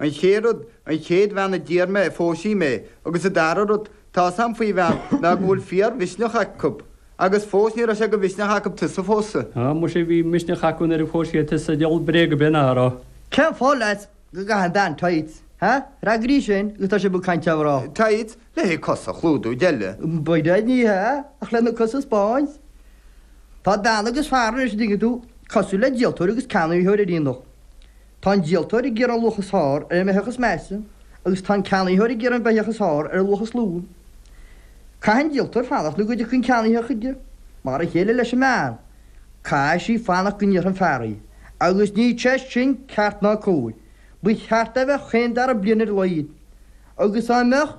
An chéad rud, an chéad bhean a d'iarr mé, phós sí mé, agus an dara rud, tá's a'm faoi bhean ná go bhfuil fíor-mhisneach acu. Agus fós ní raibh sé go mhisneach acu tusa a phósadh. Á, muise bhí misneach acu nuair a phós siad tusa, diabhal bréag a' bith ná a' rá. Cén fáth, leat, go gcaitheann bean tights, hea? Freagraigh sin agus tá sibh ag caint ar mhná. Tights? Le haghaidh cosa a chlúdú, deile. By dad ní hea, ach lena cosa a 'speáint. Tá bean agus fear anois, a dtuigeann tú, cosúil le díoltóir agus ceannaitheoir ar aonach. Tá an díoltóir ag iarraidh an luach is fearr ar an mbeitheach is measa agus tá an ceannaitheoir ag iarraidh an bheitheach is fearr ar an luach is lú. Caithfidh an díoltóir fanacht nó go dtiocfaidh an ceannaithe chuige, mar a chéile leis an mbean. Caithfidh sí fanacht go n-iarrfaidh an fear í. Agus níl sé sin ceart ná cóir. Ba cheart é a bheith chaon dara bliain ar a laghad. Agus dá mbeadh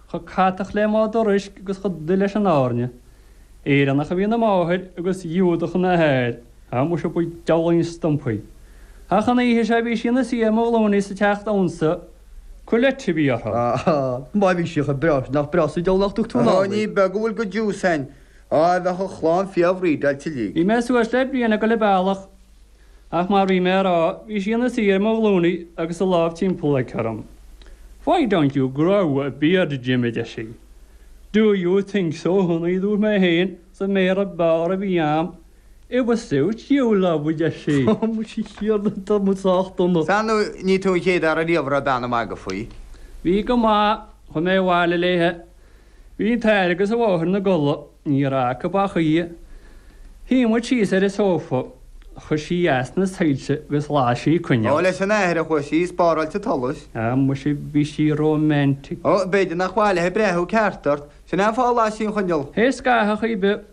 chomh catach le madra uisce agus chomh dubh leis an airne. Éireannach a bhí ina máthair agus Giúdach ina hathair, a muise ba diabhlaí an stumpa í. Ach an oíche seo bhí sí ina suí ar mo ghlúine sa teach damhsa, culotte a bhí uirthi. Áááá, má bhí sí chomh breá, nach breá sa diabhal nach dtug tú nár ní? Ó, ní beag a bhfuil go Jews a'inn. Á, bheadh an chlann fíor-bhreedeáilte uilig. Bhí mé suas le bliain ag goil a bealach Ach mar bhí mé a rá, bhí sí ina suí ar mo ghlúine agus a lámh timpeallaithe orm. Why don't you grow a beard Jim, a deir sí. Do you think so honey, a dúirt mé féin, sa mBéarla ab fhearr a bhí a'm. It would suit you, love, a deir sí. Á, tá muid sách dona. Sea no, ní tú an chéad fhear ariamh a raibh bean ag magadh faoi. Bhí go maith, chuaigh mé abhaile léithe. Bhí an t-athair agus an mháthair ina gcodladh, ní raibh acu ach í. Shuigh muid síos ar an sófa, chuir sí as na soilse agus las sí coinneal. Ó, leis an athair a chuaigh sí, ag spáráilt an tsolais! Á, muise, bhí sí romantic! Ó, b'fhéidir nach mb'áil léithe breathú ceart ort, sin é an fáth a las sí an choinneal! Tar éis scathamh ar chaoi ar bith!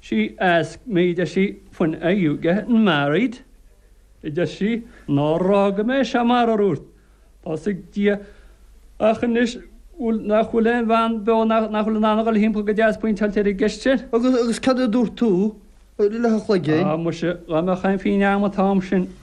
She asked me a deir sí when are you getting married? a deir sí, nár fhága mé seo marar dhúirt, tá's ag Dia, ach anois nach bhfuil aon bhean beo, nach bhfuil in ann a dhul timpeall go deas pointeáilte ar an gceist sin. Agus cad a dúirt tú a leathchloiginn? Ah, muise, dá mbeadh aon phínn agam an t-am sin!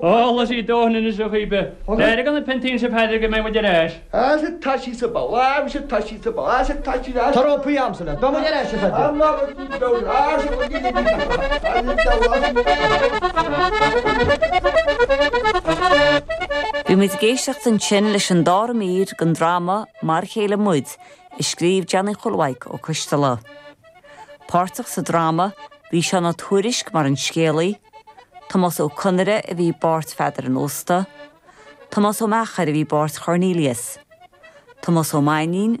Chuala sí dóthain anois ó chroí beith. D'éirigh ina piontaí Naomh Pádraig go mbeidh muid ar ais! Bhí muid ag éisteacht ansin leis an dara mír den dráma Mar a chéile muid, a scríobh Johnny Chóil Mhaidhc Ó Coisdealbha. Páirteach sa dráma bhí Seán Ó Tuairisc mar an scéalaí, Tomás Ó Conaire a bhí i bpáirt Pheadair an Ósta, Tomás Ó Meachair a bhí i bpáirt Chornelius, Tomás Ó Mainnín,